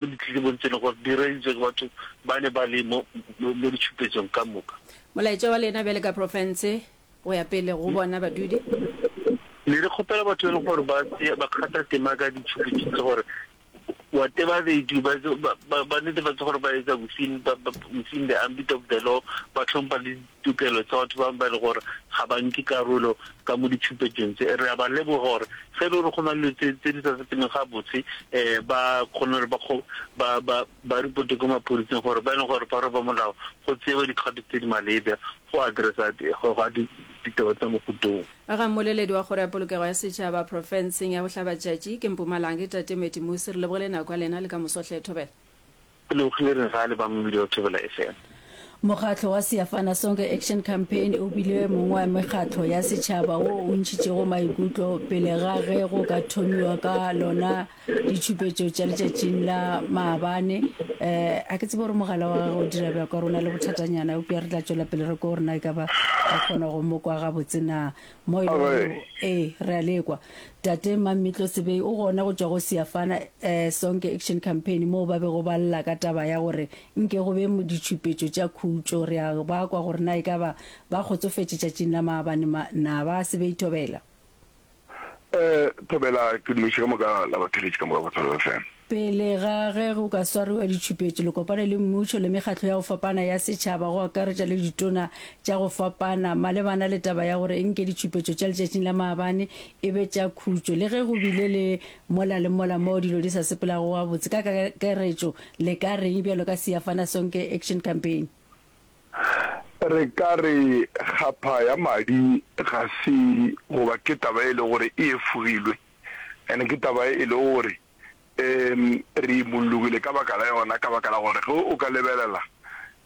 Ditletlebong tše e lego gore di reeditšwe ke batho ba ne ba le mo mo ditšhupetsong ka moka. Molaetša wa lena bjale ka profense go ya pele go bona badudi. Ne re kgopela batho e lego gore ba se ba kgatha tema ka ditšhupetšong tše gore wa teba they do ba ba ba netefatse gore ba etsa within ba within the ambit of the law ba tlhompha le tokelo tsa batho ba bangwe ba e lego gore ga ba nke karolo ka mo ditšhupetšong tse. Re a ba leboga gore ge e le gore go na le dilo tse di sa sepeleng gabotse, um ba kgone gore ba ba ba ba ripote ko maphodiseng gore ba e leng gore ba roba molao go tsewe dikgato tse di maleba go addressa go ga ditaba tsa mohuta o. A ga mmoleledi wa Kgoro ya Polokego ya Setšhaba profenseng ya Bohlabatšatši ke Mpumalanga ke Tate Mattie Mosi. Re lebogile nako ya lena le ka moso hle. Thobela. Ke lebogile re ra le ba mmidi wa Thobela FM. Mokgatlo wa Siafana Sonke Action Campaign o bile mongwe wa mekgatlo ya setšhaba wo o ntšhitšego maikutlo pele ga ge go ka thomiwa ka lona ditšhupetšo tša letšatšing la maabane. Um a ke tsebe gore mogala wa gagwe o dira bjang ka gore o na le bothatanyana, eupša re tla tšwela pele re ko gore na e ka ba re kgona go mo kwa gabotse na. Moelo wo, ee, re a le kwa. Tate Mmamitlo Sebei o gona go tšwa go Siafana Sonke Action Campaign moo ba bego ba lla ka taba ya gore nke go be ditšhupetšo tša khutšo. Re a ba kwa gore na e ka ba ba kgotsofetše tšatšing la maabane ma, na ba? Sebei Thobela. Ee, Thobela, ke nnoši ka moka la ba theletše ka moka go Thobela FM. Pele ga ge go ka swariwa ditšhupetšo, le kopane le mmušo le mekgatlo ya go fapana ya setšhaba, go akaretša le ditona tša go fapana, malebana le taba ya gore e nke ditšhupetšo tša letšatšing la maabane e be tša khutšo. Le ge go bile le mola le mola moo dilo di sa sepelago gabotse, ka kakaretšo le ka re'ng bjalo ka Siyafana Sonke Action Campaign? Re ka re kgapha ya madi ga se goba ke taba e le gore e efogilwe, and ke taba e le gore um re imollogile ka baka la yona, ka baka la gore ge o ka lebelela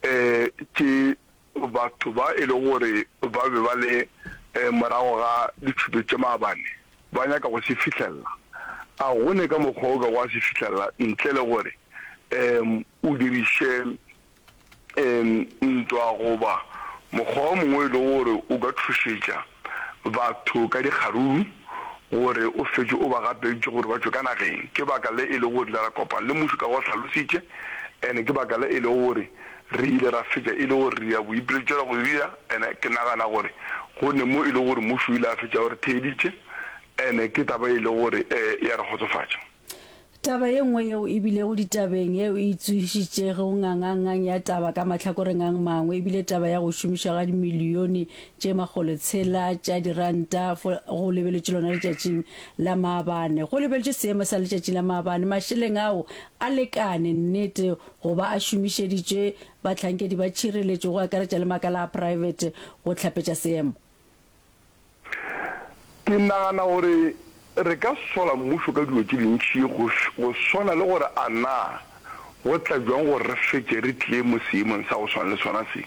um ke batho ba e le gore ba be ba le um morago ga ditšhupe tše maabane ba nyaka go se fihlelela. A go ne ka mokgwa o ka go a se fihlelela ntle le gore um o diriše ntwa goba mokgwa o mongwe e lego gore o ka thušetša batho ka dikgaruru gore o fetše o ba gapeditše gore ba tšwe ka nageng. Ke baka le e lego gore re ile ra kopana le mmušo ka go hlalositše and ke baka le e lego gore re ile ra fetša e le gore re ya boipiletšela go dira and ke nagana gore go ne mo e lego gore mmušo o ile a fetša o re theeditše and ke taba e lego gore ya re kgotsofatša. Taba ye nngwe yeo e bilego ditabeng yeo e tsogišitšego ngangangang ya taba ka mahlakoreng a mangwe e bile taba ya go šomišwa ga dimilione tše makgolo tshela tša diranta go lebeletše lona letšatšing la maabane. Go lebeletše seemo sa letšatšing la maabane, mašeleng ao a lekane nnete go ba a šomišeditšwe bahlankedi ba tšhireletšo go akaretša le makala a praebete go hlapetša seemo? Ke nagana gore re ka sola mmušo ka dilo tše dintši go swana le gore a na go tla bjang gore re fetše re tlile mo seemong sa go swana le sona se,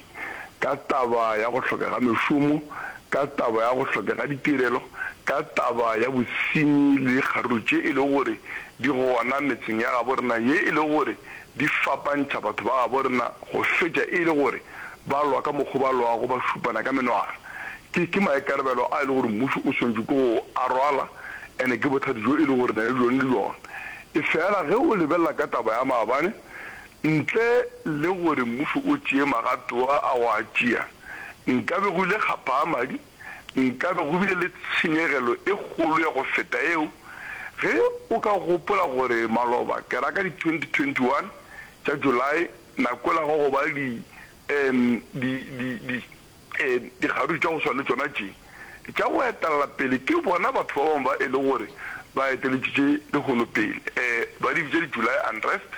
ka taba ya go hloka ga mešomo, ka taba ya go hloka ga ditirelo, ka taba ya bosenyi le dikgaruru tše e lego gore di gona metseng ya gabo rena ye e lego gore di fapantšha batho ba gabo rena go fetša e le gore ba lwa ka mokgo ba lwago ba šupana ka menwana. Ke, ke maikarabelo a e le gore mmušo o swanetše ke go a rwala, ene ke bothati bjo e le gore re na le bjone le bjona. Efela ge o lebelela ka taba ya maabane, ntle le gore mmušo o tšee magato a a go a tšea, nkabe go ile ga paa madi, nkabe go bile le tshenyegelo e kgolo ya go feta yeo. Ge o ka gopola gore maloba, ke ra ka di 2021 tša July, La kwelago go ba di, um, di, di, di, um, dikgaruru tša go swana le tšona tše tša go etelela pele, ke bona batho ba bangwe ba e le gore ba eteletšitše lehono pele. Um, ba di bitša di-July unrest,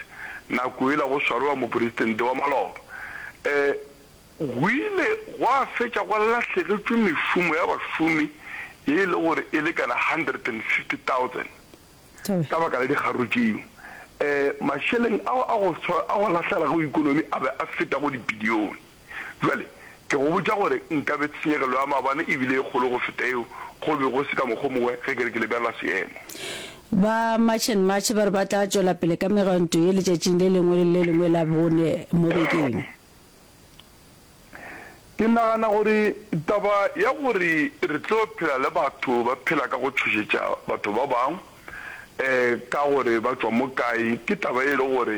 nako yela go swarwa moporesitente wa maloba. Um, go ile gwa fetša go lahlegetšwe mešomo ya bašomi ye e le gore e lekana hundred and fifty thousand. ka baka la dikgaruru tšeo, mašeleng ao a go swa a go lahlegela go ekonomi a be a feta go dibilione. Bjale ke go botša gore nkabe tshenyegelo ya maabane e bile e kgolo go feta yeo go be go se ka mokgwa o mongwe ge ke re ke lebelela seemo. Ba March and March ba re ba tla tšwela pele ka megwanto ye letšatšing le lengwe le le lengwe la bone mo bekeng. Ke nagana gore taba ya gore re tlo phela le batho ba phela ka go tšhošetša batho ba bangwe ka gore ba tšwa mo kae ke taba e le gore